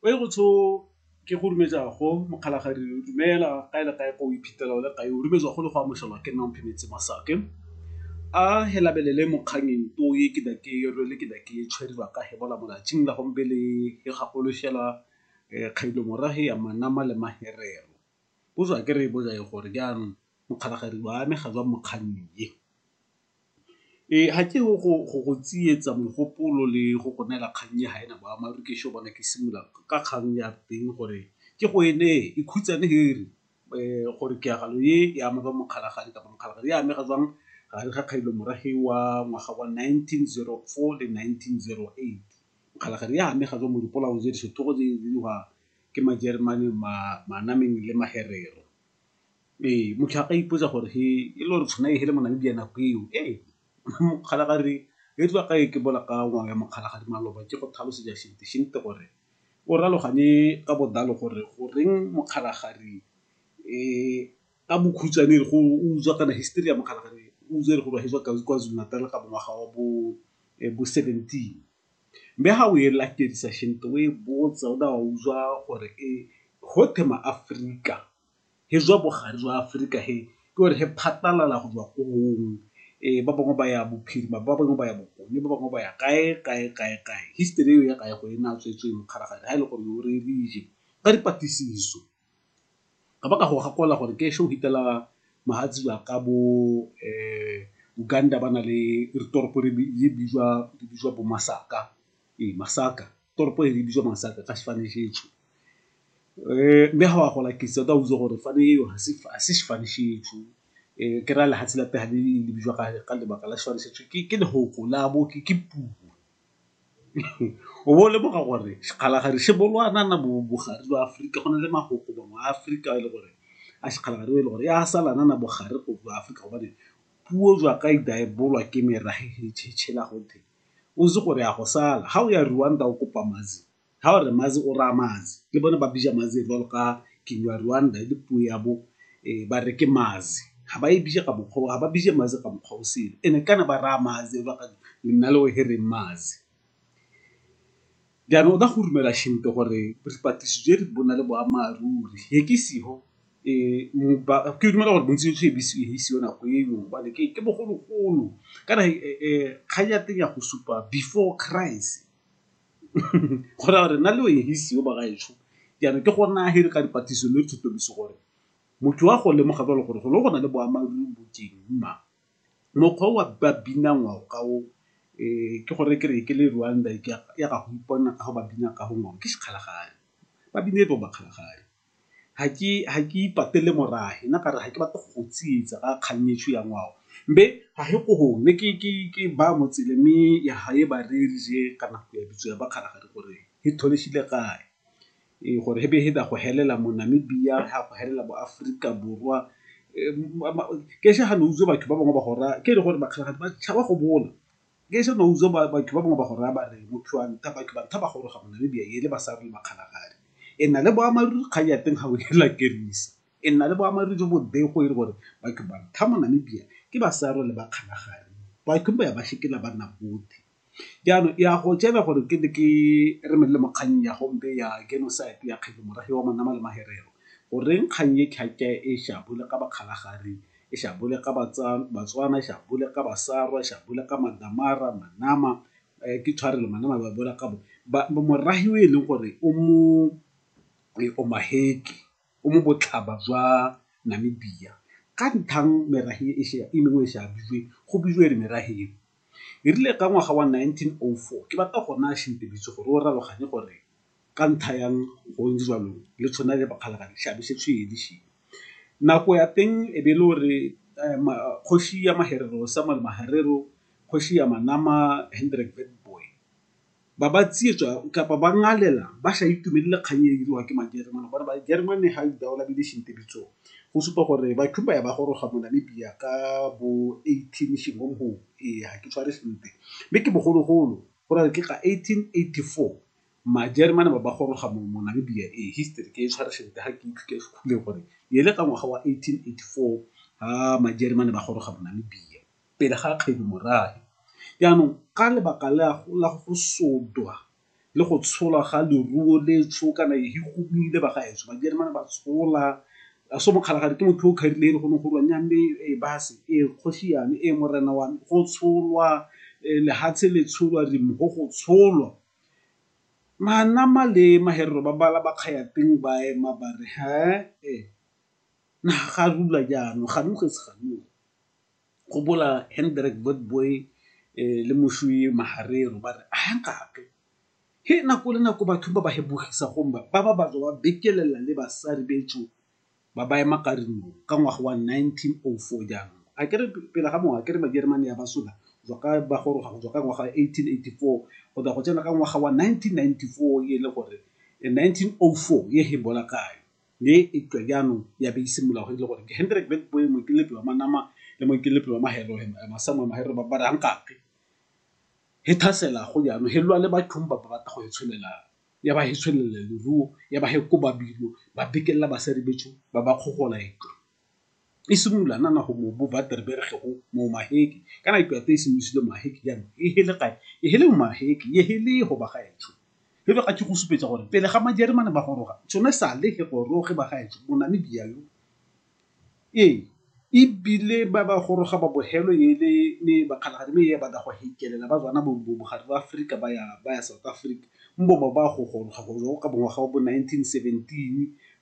o e go tsho ke go rumetsa go mokgalagadi o dumela ka e le kae ko o iphitlhela o le kae o rumetsa go le go amogelwa ke nna mphemetse masake a he labelele mokganyeng to ye ke da ke re le ke da ke tshweriwa ka he bola molatsing la gombe le he gagolo shela kgailo morahe ya manama le maherero bo tswa ke re bo jae gore jaanong mokgalagadi wa ame ga jwa mokganyeng ye Ee, ga ke go go tsietsa mogopolo le go go neela kgang e ga ena boammaaruri ke sure gone ke simolola ka kgang ya teng gore ke go e neye e khutshwane he e re gore tiragalo e e ama ba Mokgalajane kapa Mokgalajane e amega jwang gare ga kgailo morafe wa ngwaga wa nineteen zero four le nineteen zero eight. Mokgalajane e amega jwang mo dipolaong tse di setlhogo tse di diriwa ke Majeremane, Manameng le Magerero. Ee, motho a ka ipotsa gore he e le gore tshwana e hele Monamibia nako eo ee mokgalagadi e tlo ka e ke bola ka ngwao ya mokgalagadi maloba ke go tlhalosetsa gore o raloganye ka botlalo gore goreng mokgalagadi ka bokhutshwane e re go utswa kana histori ya mokgalagadi utswa e re go ba hetswa Kwa-Zulu Natal ka ngwaga wa bo bo seventeen. Mme ha o e latedisa o e botsa o a utlwa gore e gotwe ma-Aforika. he jwa bogare jwa Aforika he ke gore he phatalala go tswa ko gong ba bangwe ba ya bophirima, ba bangwe ba ya bokone, ba bangwe ba ya kae, kae, kae, kae. History eo ya Kaego e na tswetswe mokgalagadi ha e le gore o re rije ka dipatlisiso ka ba ka go gakola gore ke ešo hitela mahatsibi a ka bo Uganda ba na le re toropo re bitswa bo Masaka, ee Masaka. toropo e bitswa masaka ka sefane šetšo um mme ga wa gola ke tsata o botsa gore fane eo ga se sefane šetšo um eh, ke ra lehatshe la pega le le bitswa ka lebaka la sefane šetšo ke lehoko la bo ke puo o bo le boga gore sekgalagadi se bolwana na bogare jwa aforika go na le magoko bangwe a aforika e le gore a sekgalagadi e le gore ya salana na bogare go jwa aforika gobane puo jwa ka e daebolwa ke merage e tšhetšhela gothe O itse gore ya go sala. Ga o ya Rwanda o kopa Mazi, ga o re Mazi o raya Mazi. Le bone ba bija Mazi jwalo ka Kinyarwanda e le puo ya bo ba re ke Mazi. Ga ba e bije ka mokgwa oo, ga ba bije Mazi ka mokgwa o sele. And-e kana ba raya Mazi jwalo ka nna le wehe re reng Mazi. Jaanong o ka go dumela Shembe gore dipatlisiso tse di bo na le boammaaruri he ke siho ke dumela gore bontsi e be e isiwe nako e no gobane ke bogologolo kana kgang ya teng ya go supa before Christ go raya gore nna le o e isiwe ba gaetsho. Jaanong ke gona he re ka dipatlisiso le gore motho wa go lemoga jalo gore go ne go na le boammaaruri bo teng na. Mokgwa o ba binang ngwao ka o ke go re ke re ke le Rwanda e ke ya ga go ipona ka go ba bina ka go ngwao ke sekgalagadi. Ba bina e bong ba kgalagadi. Ga ke ipatele morahe nna ka re ga ke batle go tsietsa ka kgang e ya ngwao mme ga e ko gone ke ba mo tseleng mme ya ga e ba reye kana ya bitso ya ba kgalagadi gore e kae. gore he be he da go helela mo Namibia, he a go helela mo Afrika Borwa. Ke se ha no uzo batho ba bangwe ba gora, ke re gore bakgalagadi ba tshaba go bola. Ke se no uzo batho ba bangwe ba gora ba re motho wa nta, batho ba nta ba goroga mo Namibia ele ba sa re bakgalagadi. E na le boammaaruri kgang ya teng ga o e lakerisa. E na le boammaaruri jo bo e le gore batho ba nta mo Namibia ke ba sa role bakgalagadi. Batho ba ya ba shekela ba nna bothy. Jaanong ya go jela gore ke ne ke re melele mo kgannyeng ya gompe ya genocide ya Kgetlho Morafe wa Manama le Maherero. Goreng kgang e khakhya e shabole ka Bakgalagadi, e shabole ka Batswana, e shabole ka Basarwa, e shabole ka Mandamara, Manama, ke tshwarelo Manama ba bolela ka bo morafe o e leng gore o mo omaheke. o mo botlhaba jwa Namibia. Ka nthang merahe e mengwe e se a bijwe, go bijwe re merahe eo. E rile ka ngwaga wa 1904, ke batla go naya Shintebiso gore o raroganye gore ka ntha yang go ntse jalo le tshona le Bakgalagadi seabe se se ye le se ye. Nako ya teng e be e le gore kgosi ya Maherero Samuel Maharero, kgosi ya Manama Hendrik Witbooi. ba ba tsietsa kapa ba ngalela ba sa itumelele kgang e diriwang ke Majeremane gore Majeremane ga go supa gore Ba-Cuba ba goroga mo Namibia ka bo eighteen ee ga ke tshware sentle. Mme ke bogologolo go ra re ke ka eighteen eighty-four Majeremane ba ba goroga mo Namibia ee history ke e tshware sentle ga ke itse gore e le ka ngwaga wa eighteen eighty-four ga Majeremane ba goroga mo Namibia. pele ga kgedu morahe. Jaanong ka lebaka la go sotwa le go tsholwa ga leruo letsho kana e gomile ba gaetsho Majeremane ba tshola so Mokgalajadi ke motho o kharileng e le go ne go rwa nya mme e base e kgosi yane e morena wa me go tsholwa lehatshe le tsholwa re mo go tsholwa. Manama le Maherero ba bala ba kgaya teng ba ema bare naha ga rula jaanong ga . gopola Hendrik Witbooi le moswi Maharero ba re, Aa nkake! He nako le nako batho ba ba hebogisa gongwe ba ba ba tswa ba bekelela le basari becho ba ba ema ka rinong ka ngwaga wa 1904 jaanong. A ke re pele ga moo a ke re Majeremane ya ba sola jwa ka ba goroga go tswa ka ngwaga wa 1884 go tla go tsena ka ngwaga wa 1994 e le gore 1904 ye he bola kayo. mme e tswa jaanong ya be e simolola go e le gore ke Hendrick Witbooi moikeletsi wa manama le moikeletsi wa mahelo Samuel Mahero ba bara nkake he thasela go jaanong he lwa le bathong ba ba batla go e tsholela ya ba he tshwelele leruo ya ba he koba bilo ba bikelela basadi ba ba kgogola e tlo. e simolola nana go mo bo Waterberg go mo Maheke kana ke ate e simolosile Maheke jaanong e hele kae e hele Maheke e hele go ba gaetsho e be ga ke go supetsa gore pele ga Majeremane ba goroga tsone sale he goroge ba gaetsho Monamibia yo ee ebile ba ba goroga ba bogelo e le ne bakgalagadi me e ba da go hekelela ba tswana bo bogare ba Aforika ba ya South Africa mbo ba go goroga go ka bongwaga wa bo nineteen seventeen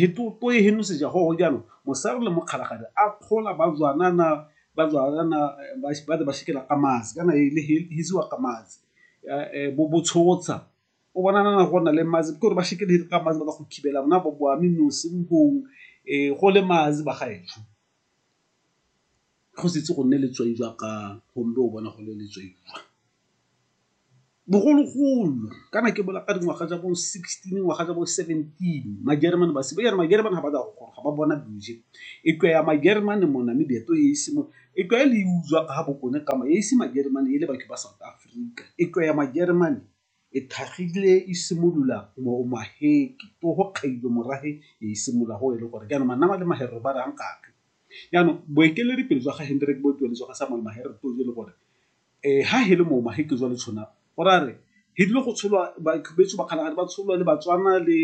Hitoe henoseja go go jalo, mosare le mokgalagadi a kgola ba jwanana, ba jwanana ba ba re ba shikela ka matsi kana e le hisiwa ka matsi bo bo tshotsha o bona na go na le matsi ke gore ba shikela ka matsi ba tla go thibela bona bo a mme nosi mo gong go le matsi ba gaetsho. Go setse go nne letswai jwa ka gombe o bona go le letswai jwa. Bogologolo kana ke bola ka dingwaga tsa bo sixteen ngwaga tsa bo seventeen majeremane ba simolola jang majeremane ga ba tswa go goroga ba bona bese e tloga ya majeremane mona mme leeto e ise mo e tlwa e le e utlwa ka ga bokone ka e ise majeremane e le batho ba South Africa e tloga ya majeremane e thagile e simolola mo Maheke ko go kgaiwa morafe e simolola go e le gore jaanong manaba le maherero ba raya nkare jaanong boeteledipele jwa ga Hendrick bo tsweletswa ga Samuel Maherero e le gore Ee, ha he le mo ma he ke jwale tshona o ra re he dilo go tsholwa ba beso ba kgalagadi ba tsholwa le batswana le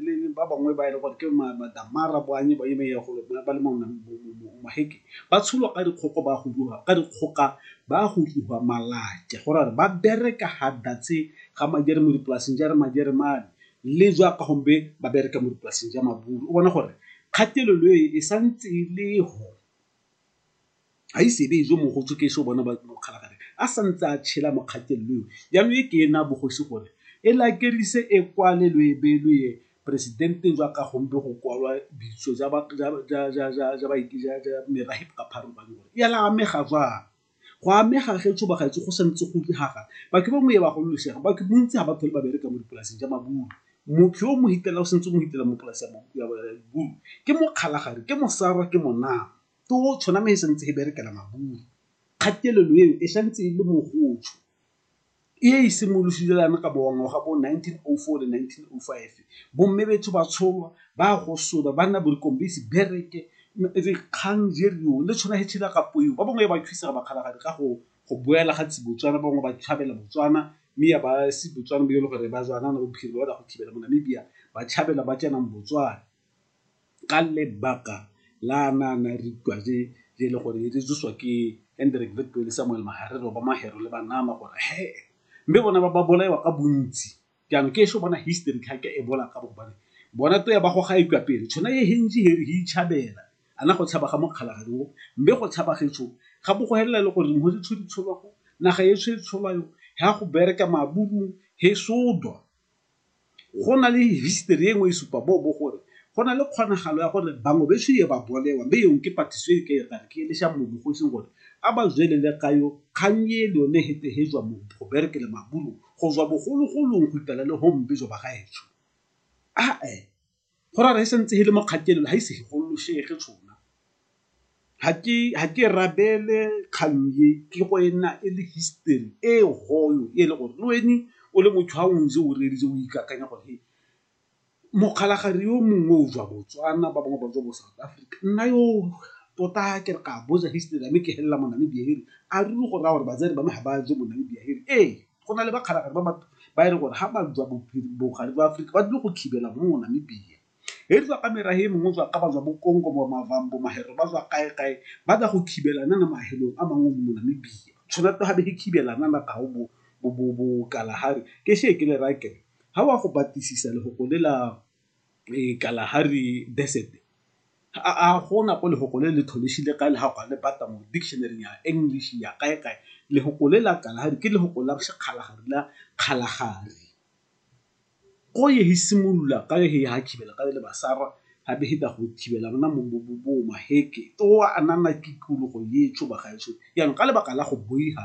le ba bangwe ba ile e gore ke ma madamara bo anye ba ime ya go ba le mo ma he ke ba tsholwa ka dikgoko ba go dua ka dikgoka ba go dua malake go ra re ba bere ka ha datse ga majere mo dipolaseng ja re majere mane le jwa ka gombe ba bere ka mo dipolaseng ja maburu o bona gore kgatelelo e e santse le ho Ga ise e be e jo mogo jo ke eso bona ba mokgalagare a sa ntse a tshela mo kgatelelo eo. Jaanong e ke e na bogosi gore e lakerise e kwale lo e beye lo ye presidenteng jwa ka gombe go kwalwa bitso ja merafe ka phara ba gore ya la amega jwang. Go amega ge jo bagaetsho go santse go diragala batho ba moye ba gololosega batho bontsi ga ba tlhole ba bereka mo dipolaseng ja mabulo motho yo o mo hitela o santse o mo hitela mo polase ya mabulo ke mokgalagadi ke mosarwa ke monama. Totšho nama e santse e berekela maburu. Kgatelelo eo e santse e le mogotsho e e simolosilelang ka bongwe ga bo 1904 le 1905. Bomme betsho ba tsholwa, ba gosola, ba nna borikong ba ise bereke, dikgang di riwa le tshwana e tshela ka poyo. Ba bangwe ba thusa ba kgalagadi ka go boela ga tsi Botswana, ba bangwe ba tshabela Botswana mme ya ba se Botswana bo e le gore ba Zwana go thibela mo Namibia ba tshabela ba tsenang Botswana. ka lebaka la na na re utlwa je je le gore re jesiwa ke Hendrik Witbooi le Samuel Mahare re ba Mahero le ba nama gore he mme bona ba ba bolaiwa ka bontsi jaanong ke esho bona history ga ke e bola ka bobane bona to ya ba go ga e kwa pele tshwana e hentsi he re hi chabela ana go tshaba ga mokgala ga go mme go tshaba ge tsho ga bo go helela le gore mo di tshodi tsholwa go naga e tsho e tsholwa yo ha go bereka maburu he sodwa go na le history e nngwe e supa bo bo gore go na le kgonagalo ya gore bangwe be tshwiye ba bolewa be yong ke patiso e ke e gare ke e lesha mo bogosing gore a ba zwelele ka yo kgang ye le yone he tehejwa mo go bereke le mabulu go zwa bogologolong go itala le home be zwa ba gaetsho a e go ra re sentse e le mo kgatelelo ga ise gololosege tshona ga ke ga ke rabele kgang e ke go ena e le history e goyo e le gore le wene o le motho ga o ntse o reeditse o ikakanya gore he mokgalagare yo mongwe o jwa botswana ba bangwe ba jwa bo south africa nna yo tota ke re ka boja history ame ke helela mo namibia here a ruri go raya gore batsadi ba me ga ba je mo namibia here ee Go na le bakgalagadi ba batho ba e leng gore ga ba jwa bogare jwa Aforika ba tlile go thibela mo mo Namibia. He di jwa ka merahe e mengwe jwa ka ba jwa bo Kongo, bo Mavambo, Mahero ba jwa kae kae ba tla go thibela nana mahelong a mangwe mo Namibia. Tshwanetse ga be he thibela nana ka go bo bo bo bo Kalahari ke she ke le raya kere ha wa go batlisisa lefoko le la Kalahari Desert a gona ko lefoko le le tlholegile ka le ga go a le batla mo dictionary ya English ya kae kae lefoko le la Kalahari ke lefoko la sekgala ga rula Kgalagadi go e simolola ka le ga thibela ka le ba sala ga be feta go thibela bona mo maheke a nna tikologo e tshuba ga ešo jaanong ka lebaka la go boifa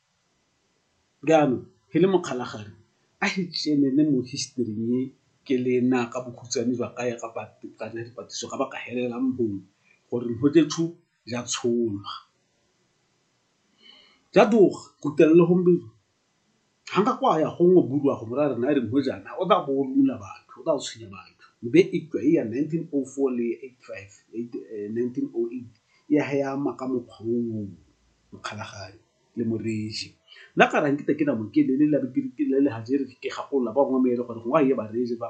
Bjalo, ke le mokgalagadi, a re tšeelele mo historing e ke le na ka bokhutswane jwa ka ya ka dipatlisiso ga ba ka helelang bong gore Mhotetshu ja tsholwa. Ja tloga kutlelele gompieno ga nka kwa ya gongwe bodiwa go bolaya rena re mojana o tla bo o rula batho, o tla go tshwenya batho. Mme eupša e ya nineteen oh four le eight five, nineteen oh eight ya he e ama ka mokgwa o o. mokgalagadi le moreetsi nna ka reng ke te ke na moke le le le le le ha jere ke gakolola ba bangwe ba e le gore go a ye ba reetsi ba